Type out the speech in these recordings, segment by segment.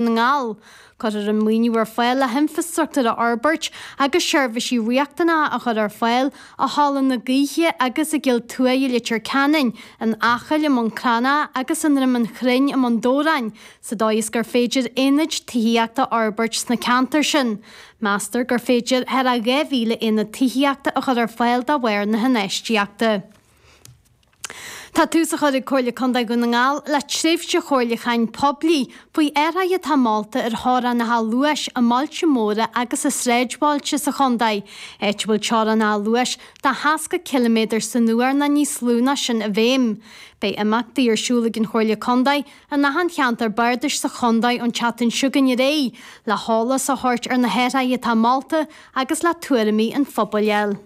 na nGall. Cuirfear an maoiniú ar fáil le hinfrastruchtúr a fhorbairt agus seirbhísí riachtanacha a chur ar fáil i Halla na Gaoithe agus i gCill Tuaidh i Leitir Ceanainn, in Acaill i mBun Cranncha agus i nDroim an Chrainn i mBun Dobhráin, sa dóigh is gur féidir aonaid tithíochta a fhorbairt sna ceantair sin. Meastar gur féidir thar a 2,000 aonad tithíochta a chur ar fáil de bharr na hinfheistíochta. Tá tús á chur ag Comhairle Contae Dhún na nGall le tréimhse chomhairliúcháin poiblí faoi athruithe atá molta ar theorainneacha luais i mbailte móra agus i sráidbhailte sa chontae, áit a bhfuil teorainneacha luais de 60 ciliméadar san uair nó níos lú ná sin i bhfeidhm. Beidh imeachtaí ar siúl ag an Chomhairle Contae in achan cheantar bardais sa chontae ón tseachtain seo chugainn ar aghaidh, le heolas a thabhairt ar na hathruithe atá molta agus le tuairimí an phobail.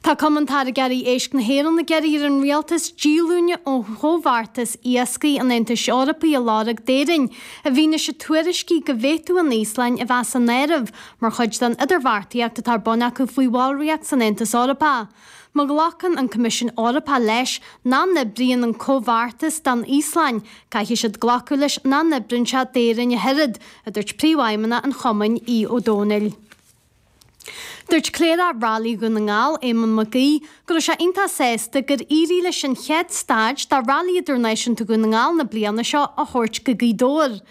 Tá Cumann Táirgeoirí Éisc na hÉireann ag iarraidh ar an Rialtas díolúine ó Chomhbheartas Iascaigh an Aontais Eorpaigh a lorg d'Éirinn, i bhfianaise tuairiscí go bhféadfadh an Íoslainn a bheith san áireamh mar chuid den idirbheartaíocht atá ar bun acu faoi bhallraíocht san Aontas Eorpach. Má ghlacann an Coimisiún Eorpach leis nach n-oibríonn an Comhbheartas don Íoslainn, caithfidh siad glacadh leis nach n-oibríonn sé d'Éirinn ach oiread, a dúirt Príomhfheidhmeannach an Chumainn, Aodh Ó Domhnaill. Dúirt Cléireach Railí Dhún na nGall, Éamonn Mac Aoidh, go raibh sé iontach sásta gur éirigh leis an chéad staid de Railí Idirnáisiúnta Dhún na nGall na bliana seo a thabhairt go Gaoth Dobhair.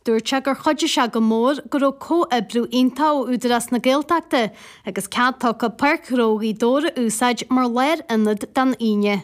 Dúirt sé gur chuidigh sé go mór go raibh comhoibriú iontach ó Údarás na Gaeltachta agus cead tugtha Páirc Ghnó Ghaoth Dobhair a úsáid mar lárionad don Aoine.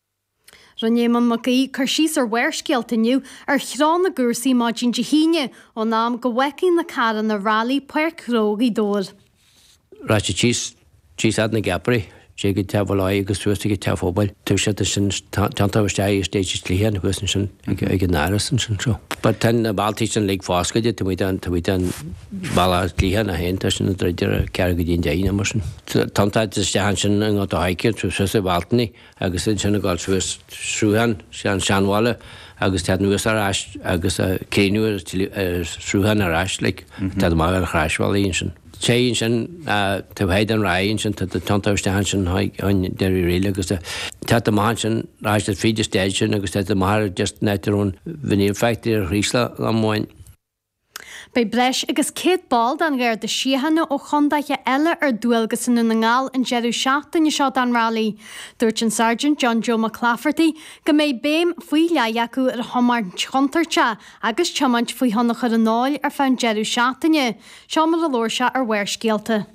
Rinne Éamonn Mac Aoidh cur síos ar Bharrscéalta inniu ar threo na gcúrsaí maidin Dé hAoine ón am go bhfágfaidh na carranna railí Páirc Ghnó Ghaoth Dobhair. Rachaidh siad síos fhad na gceapairí, téigh go teach Bhaile Áthaigh agus suas chuig teach an phobail, taobh siad ansin téann tú isteach i stage is dlighe an thuas ansin ag an Áras ansin so but tá na bealtaí sin uilig foscailte, taobh amuigh taobh amuigh den balla is dlighe ann féin tá sin an druid ar a ceathair go dtí an deich nó mar sin. Téann tú isteach ansin i nGort a' Choirce, suas an Bhealtaine, agus ansin ag dul suas Sruthán, sé an Seanbhaile agus téann anuas ar ais agus céiniú ar Sruthán ar ais like, téann amach ar chroisbhealach ansin. Téigh ansin taobh thiar den Ráith ansin tá tú ag tiontú isteach ansin chuig Doire Uí Fhríl agus téann amach ansin ar ais fríd an stage sin agus téann amach ar just net your own veneer factory ar Chraoslach amháin. Beidh breis agus 100 ball den Gharda Síochána ó chondaetha eile ar dualgas i nDún na nGall an deireadh seachtaine seo don railí. Dúirt an Sáirgint John Joe Mac Laifeartaigh go mbeidh béim faoi leith acu ar thiomáint chontúirteach agus tiomáint faoi thionchar an óil ar feadh an deireadh seachtaine. Seo mar a labhair sé ar Bharrscéalta.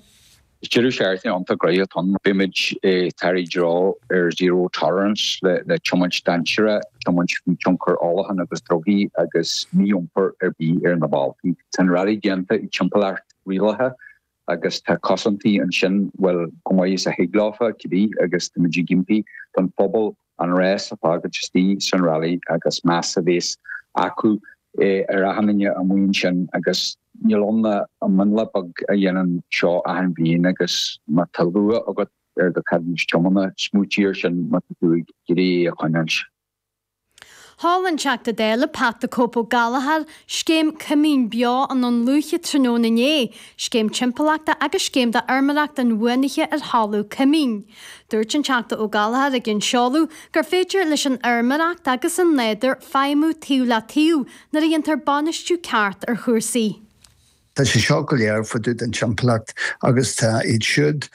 Is deireadh seachtaine iontach gnaitheach atá ann. Beimid ag tabhairt i dtreo ar zero tolerance le tiomáint dainséarach, tiomáint faoi thionchar ólacháin agus drugaí agus mí-iompar ar bith ar na bóithre. Tá an rally déanta i dtimpeallacht rialaithe agus tá cosaintí ansin, bhuel, chomh maith is a thig leofa, cibé, agus táimid ag impí don phobal, an rás a fhágáil istigh san railí agus meas a bhéas acu ar achan nduine amuigh ansin agus níl ann ach an mionlach beag a dhéanann seo achan bhliain agus má tá luach agat ar do cheadúnas tiomána smaoitigh ar sin má tá tú ag iarraidh é a choinneáilt. Sheol an Teachta Dála Pat the Cope Ó Gallchóir scéim Coimín Beo i nDún Lúiche tráthnóna inné, scéim timpeallachta agus scéim do fheirmeoireacht inbhuanaithe ar thalamh coimín. Dúirt an Teachta Ó Gallchóir ag an seoladh gur féidir leis an fheirmeoireacht agus an nádúr feidhmiú taobh le taobh nuair a dhéantar bainistiú ceart ar chúrsaí. Tá sé seo go léir fá dtaobh den timpeallacht agus tá iad siúd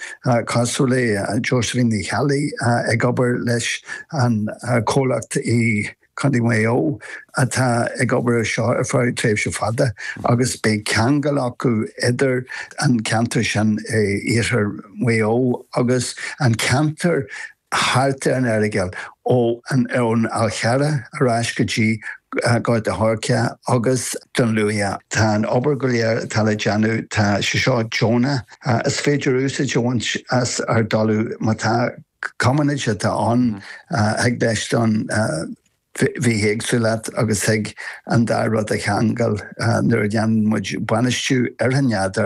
cosúil le Josephine Uí Cheallaigh ag obair leis an comhlacht i Contae Mhaigh Eo atá ag obair ar seo ar feadh tréimhse fada agus beidh ceangal acu idir an ceantar sin i iarthar Mhaigh Eo agus an ceantar thart ar an Earagail ó an ón Fhál Charrach ar ais go dtí Gort a Choirce agus Dún Lúiche. Tá an obair go léir atá le déanamh tá sé seo deonach. Is féidir úsáid a bhaint as ár dtalamh má tá Commonage atá ann, thig leis don bhithéagsúlacht agus thig an dá rud a cheangal nuair a dhéanann muid bainistiú ar an nádúr